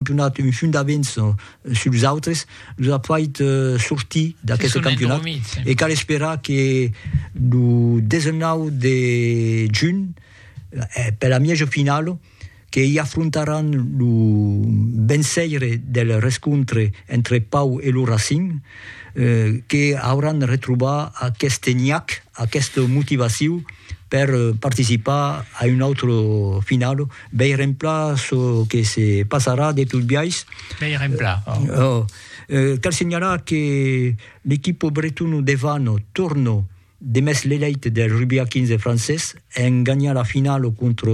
donat un fum d'avens sus los autres, los a fait sortir d'aqueste campionat e cal esperar que lo 19 de junh, per la mièja finala, que i afrontaràn lo venceire del rescontre entre Pau e lo Racing, que auràn retrobar aqueste nhac, aquesta motivaciu per participar a una autra finala. Veirempla çò que se passarà de tot biais. Veirempla, ò. Cal senhalar que l'equipo bretona de Vano torna de mès l'elèit del rugbi a 15 francés en ganhar la finala contra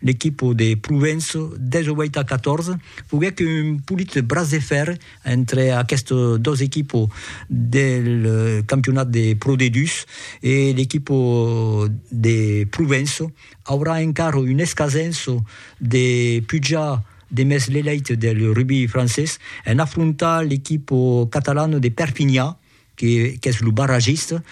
l'equipo de Provença 18 a 14. Foguèt un polit braç de fèrre entre aquestes dos equipos del campionat de Pro D2 e l'equipo de Provença. aurà encara un escasenço de pujar demest l'elèit del rugbi francés en afrontar l'equipo catalano de Perpinha, que qu'es lo barragista,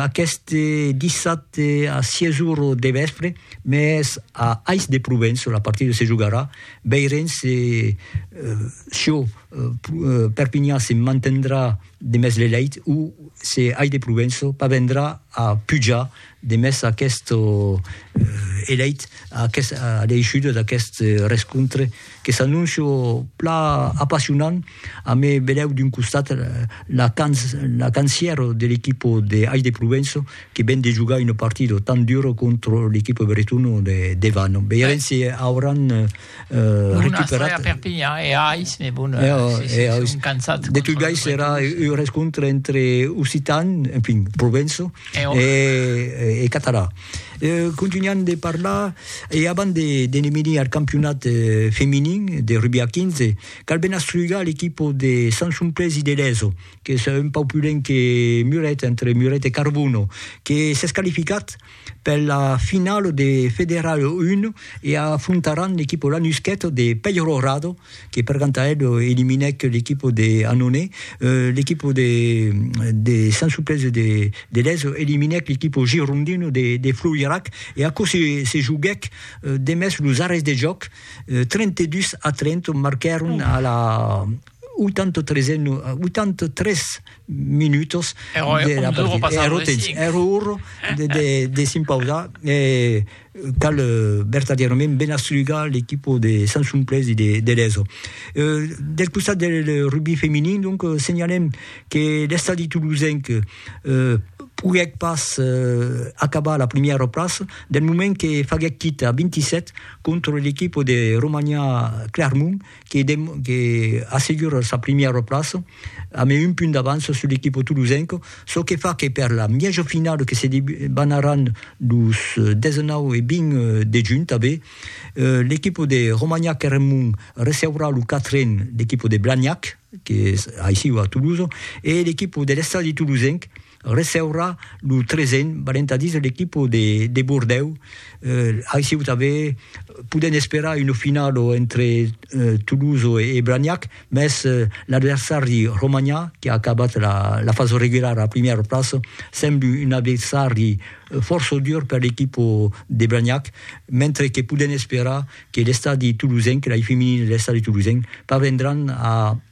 aqueste dissabte a 6 ora de vèspre, mès a Ais de Provenço la partida se jogarà, veirem se çò Perpinha se mantendrà demest l'elèit o se Ais de Provenço parvendrà a pujar Demest aqueth eleit, aqueth aleishuda d'aqueth rescontre que s'anóncia pla apassionant, amé velèu d'un costat la cancièro de l'equipo de Ais de Provenço que ven de jogar una partida tan dura contra l'equipo bretona de Vano. Veirem si auran Euh, recuperat... a Perpignan e Ais, mais bon, eh, oh, si, si, eh, si, cansat. De tout gais era un rescontre entre occitan, en fin, provenço, eh, oh. e, e, e català. Eh, continuant de parlar, e avant de, de menir al campionat eh, feminin de rugby a 15, cal ben astrugar l'equip de Sant Somplés i de l'ESO, que és un pau pulent que Muret, entre Muret e Carbono, que s'és qualificat per la finala de Federal 1 e afrontaràn l'equipa Lanusquet de Peyrorado que per ganta el eliminèc l'equipa de Annonay, l'equipa de de Sant Suplèci de de Lèz eliminèc l'equipa Girondino de de Floirac e aquò se se joguèc demest los arrèsts de jòc, 32 a 30 marquèron a la 83 e 83 minutos de la partida ero temps ero orro de s'impausar e cal vertadièrament ben astrugar l'equipo de Sansumplés e de Leso del costat del rugbi feminin donc senhalem que l'estadi tolosenc poguèc pas acabar a la primièra plaça del moment que faguèc quita 27 contra l'equipo de Romania Clermont que que assegura sa primièra plaça amb un punt d'avança sus l'equipa tolosenca, çò que fa que per la mièja finala que se debanaràn los 19 e 20 de junh tanben, l'equipa de Romagnac-Eremon receurà lo quatren l'equipa de Blagnac, que es aicí a Tolosa, e l'equipa de l'Estadi Tolosenc, receurà lo tresen balentadís de l'equipo de Bordèu. Aicí o tanben podèm esperar una finala entre Toulouse e Blagnac, mès l'adversari romanhà, qui a acabat la fasa regulara a la primièra plaça, sembla un adversari fòrça dur per l'equipo de Blagnac, mentre que podèm esperar que l'estadi toulousenc, l'eip feminin de l'estadi toulousenc, parvendràn a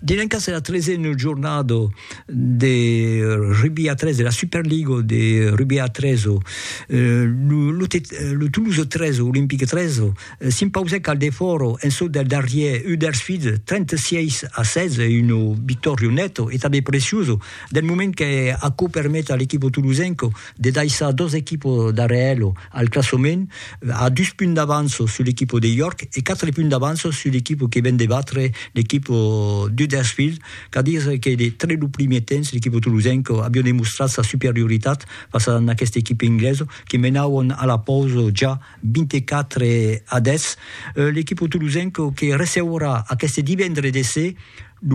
Dilenka serà tresen jornado de rugbi a tres de la Superligo de rugbi a tres. Lo, lo, te, lo Toulouse 3, Olympique 3, s'impausèc al defòro en çò del darrier Huddersfield 36 a 16, una victòria neta e tanben preciosa del moment que aquò permet a l'equipo tolosenc de daissar dos equipos darrèr elo. Al classament, a dus punts d'avança sul equipo de York e quatre punts d'avança sul equipo que ven de batre l'equipo d'Huddersfield, qu'a dire que de tre lo primier temps l'equipo tolosenc aviá demostrat sa superioritat fas a n'aquesta equipa inglesa que menavan a la pausa ja 24 a 10. L'equipo tolosenc que receurà aqueste divendre de se lo.